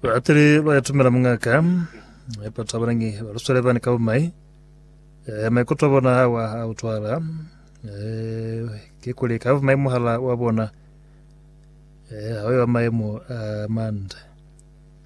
Baateli ba ya tumela mungaka ya batho ba banangi ba luswele bani ka bumai eh, maikuto a bona awa a utwala eh, ke kuli ka bumai muhala wa bona eh, ha yo maemo a mande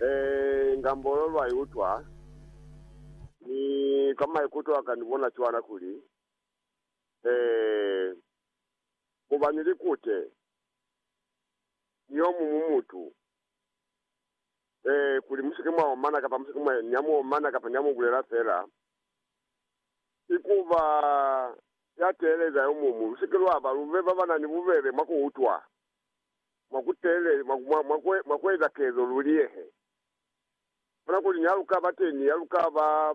Ee, inga mbolo lwa i utwa, mi kwa maikuto aka ni bona cwana kuli, ee, mu ba ni likute ni yo muñwi mutu, ee, kuli mu si ke mwa omana kapa mu si ke mwa, ni a mu omana kapa ni a mu bulela fela, ki ku ba ya teeleza yo muñwi. Lu si ke lwa ba, lu be ba ba na ni bubebe mwa ku utwa. mwa ku tele, mwa, mwa, mwa ku, mwa ku eza kezo lu liyehe. Bona kuli ni ha lu ka ba teni, ha lu ka ba,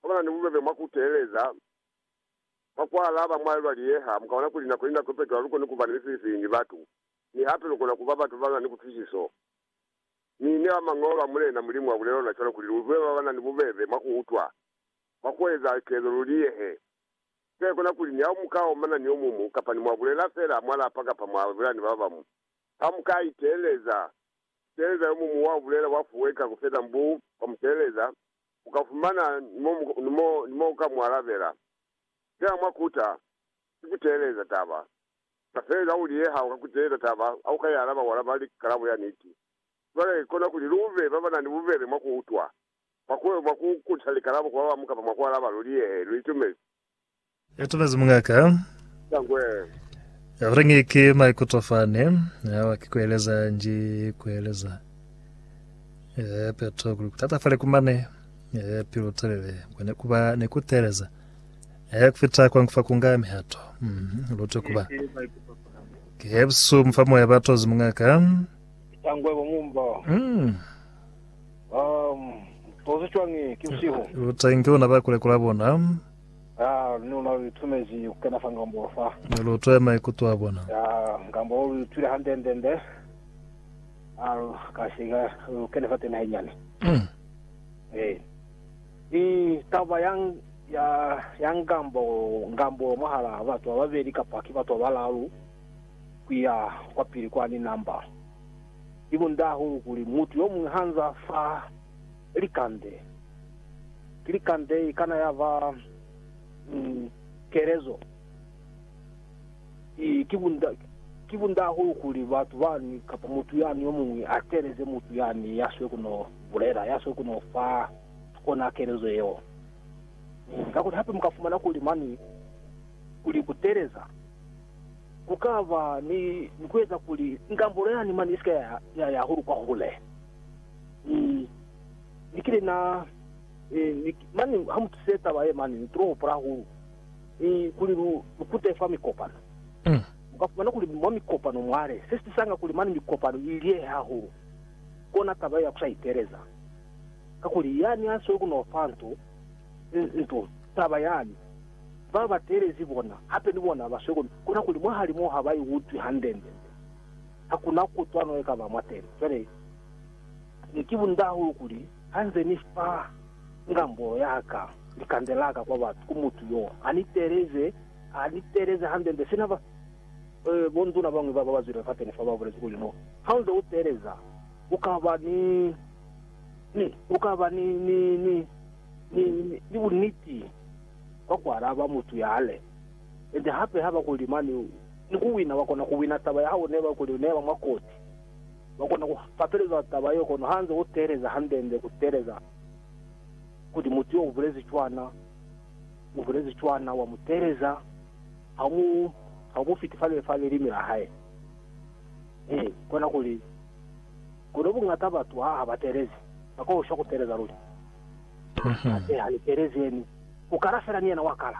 ha ba na ni bubebe mwa ku teeleza, mwa ku alaba mwa lwa liyeha, mu ka bona kuli nako ni nako ipeto ha lu koni ku ba ni mifilifili ni batu, mi hape lu kona ku ba batu ba na ni kutwisiso. Mi ne ba Mañolo a Mulena Mulimu a bulela luna cwalo kuli lu utule ba ba na ni bubebe mwa ku utwa, mwa ku eza kezo lu liyehe. Kuteka kona kuli ni ha mu ka omana ni omumu, kapa ni mwa bulela feela mwa lapa kapa mwa bulela ni babamu, ha mu ka iteeleza. Kuteeleza yomumu wa bulela bwa fuweka ku feta mbu kwa mu teeleza. U ka fumana ni mo u ka mu alabela. Feela mwa kuta, ki ku teeleza taba. Ka fele ka kuli ha u ka kuteeza taba, ha u ka i alaba, u alaba li kalabo ya niti. Cwale, kona kuli lu be ba ba na ni bubebe mwa ku utwa. Mwa ku mwa ku kuta likalabo ku babamu kapa mwa ku alaba luli, Yee, lu itumezi. Itumezi mungaka. Za ngwe. Ya kurengi ki maikuto fani, awa ki kueleza nji kueleza. Yee, peto kuli kutatafale ku mane. Yee, pilu telele. Kwa ne kuba ni ku teeleza. Yee, kufita kwa nkufa kunga mihato. Mm-hmm. Lutwe kuba. Ki hebusu mufa moya batozi mungaka. Za ngwe bo mumbo. Mm. Um, tozi cwañi ki busihu? Lutai nge luna ba kule kula bona. Ah, ni luna lu itumezi ku kena fa ngambolo fa. Ni lu twa maikuto a bona. Ah, ngambolo lu itwile hande nde nde. Ah, lu ka se ka lu kene fa tena henyane. Mm. Eh. I taba yang ya ya ngambo ngambolo mwahala batu ba babeli kapa ki batu ba balalu ku ya kwa pili kwa ni namba. Ki bunda hahulu kuli mutu yomuñwi hanzaa fa likande. Ki likande ikana yaba ni kelezo. Ki, ki bunda, ki bunda hahulu kuli batu bani kapa mutu yani yomuñwi ateleze mutu yani yaswe kuno bulela, yaswe kuno fa ona kelezo yeo. Kakuli hape mukafumana kuli mani kuli kuteleza. Ku ka ba ni ku eza kuli ngambulo yani mane i si ka ya ya hahulu kwa hule. Ni, ni kile na, ni, ni, mane ha mu tuse taba ye mane, ni tulo hupula hahulu ni kuli lu, lu kute fa mikopano. Mu ka fumana kuli mwa mikopano mwale, se si tisanga kuli mane mikopano i liyehe hahulu, kona taba ye ya ku sa iteeleza. Kakuli yani a sweli ku no fa nto, nto, taba yani, Ba ba teelezi bona hape ni bona ba swekomi, kona kuli mwahali moo ha ba iutwi hande-nde. Ha ku na kutwano ye ka ba mwateni. Cwale, ne ki bunda hahulu kuli ha nze ni fa ngambolo ya ka likande la ka kwa batu, ku mutu yo a ni teeleze, a ni teeleze hande-nde, sina ba, eh, bonduna ba bañwi ba ba zwile fateni fa ba bulezi kuli, No, ha u nze u teeleza, u ka ba ni, ni, u ka ba ni, ni, ni, Ni, ni, ni buniti bwa kualaba mutu yale. Ende hape haba kuli mani, ni kuwina, bakona kuwina taba ya hao neba kuli uneba mwa koti. Bakona ku fapeleza taba yeo, kono hanze uteeleza handende, kuteeleza kuli mutu yo ubulezi cwana, ubulezi cwana, wa muteeleza, haumu, haumufiti fa, fa lelimi la hae. He, kona kuli. Kono buñata batu ha ha ba teelezi, ba koshwa ku teeleza luli. Hape ha ni teelezeni, ku kala fela ni yena wa kala.